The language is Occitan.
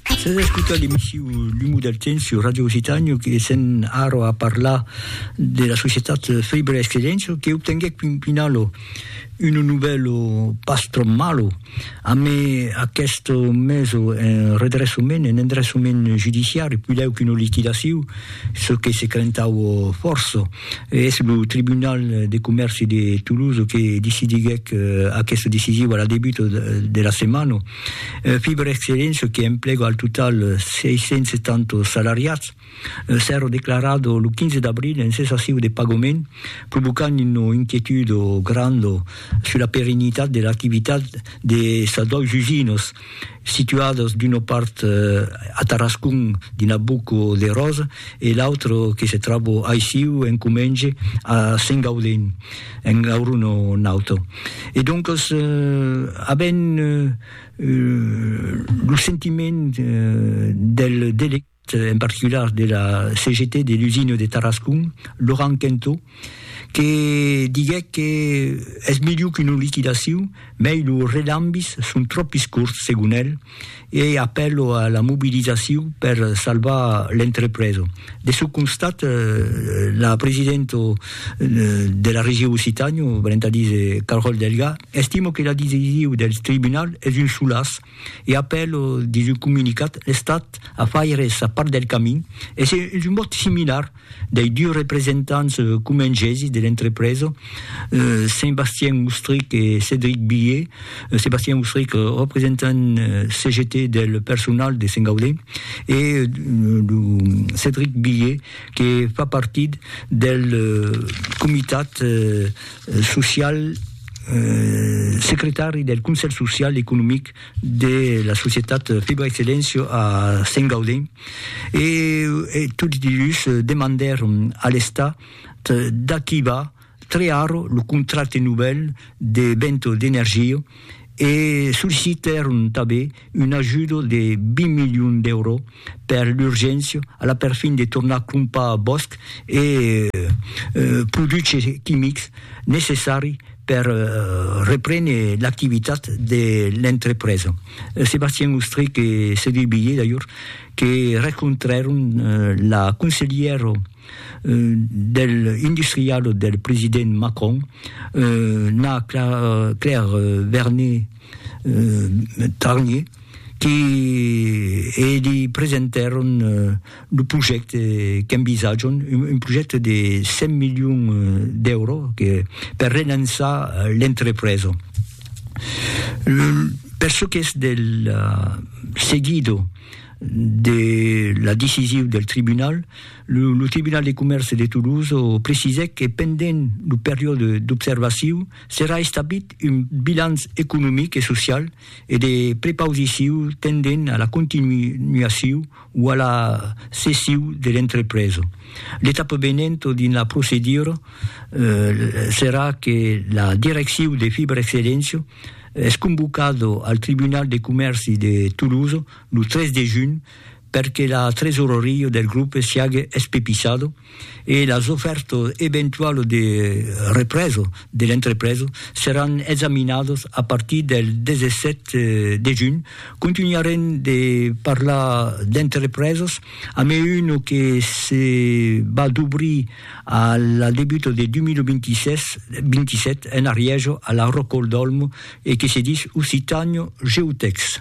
Sas a escotar l'emission L'humo del temps sur Radio Occitània que sèm ara a parlar de la societat Faber Excellencio que obtenguèc fin finalo un novèlo pas tròp malo amé aqueste meso en redressament, en endressament judiciari, puilèu qu'una liquidacion, çò que se crentaue fòrça. Es lo Tribunal de Comèrci de Toulouse que decidiguèc aquesta decision a la debuta de la setmana. Fiberexcellent, çò que emplega al total 670 salariats, s'èra declarat lo 15 d'abril en cessaciu de pagament, provocant una inquietud granda sus la perennitat de l'activitat de sas dois usinas, situadas d'una part a Tarascon dins la Boca de Rosa e l'autra que se tròba aicí en comenge a Sengaudin, en aeronauta. E doncas, avent lo sentiment del delegat, en particular de la CGT de l'usina de Tarascon, Laurent Quinteau, que diguèc que es melhor qu'una liquidacion, mei los relambis son tròpis corts, segon el, e apèlo a la mobilizacion per salvar l'entrepresa. De çò constat, la presidenta de la Region Occitània, venent a díser Carole Delga, estima que la decision del tribunal es un solàs e apèla dins un comunicat l'Estat a faire sa part del camin e es un mot similar Dei dus representants comengesi de l'entrepresa, Sébastien Oustric e Cédric Billier, Sébastien Oustric, representant CGT del personal de Saint-Gaudé, e lo Cédric Billier que fa partit del comitat social, secretari del Conselh Social, Economic, de la societat Fibra Excellencio a Saint Gaudin e, e tots dilhus demandèron a l'Estat d'activar trear lo contracte novèl de Bento d'Energia e sollicitèron tanben un ajudo de 20 milions d'èuros per l'urgéncia, a la perfin de tornar crompar bòsc e produches quimics necessari per reprene l'activitat de l'entrepresa. Sébastien Ostrich e Cédric Billé d'ajor que rencontrèron la conselhièra del industrial del president Macron, na Claire Vernet, Tarnier, que e'di presentèron lo projècte qu'envisatjam, un projècte de 100 milions d'èuros per relançar l'entrepresa. Per çò qu'es del seguido de la decisiu del tribunal, lo Tribunal de Comèrce de Toulouse precisèc que pendent lo periòde d'observaciu, Serà establit un bilanç economic e social e de prepausiciu tendent a la continuaciu o a la cessiu de l'entrepresa. L'etapa venent dins la procedura serà que la direcciu de Fibrexcellentia es convocada al Tribunal de Comèrci de Tolosa lo 3 de junh per que la tresoreria del grupe siague espepissada e las ofèrtas eventualas de represa de l'entrepresa seràn examinadas a partir del 17 de junh. Contunharem de parlar d'entrepresas amé una que se va dobrir a la debuta de 2027 en Arièja, a la Ròcol d'Òlmo, e que se dis Occitània Geotècs.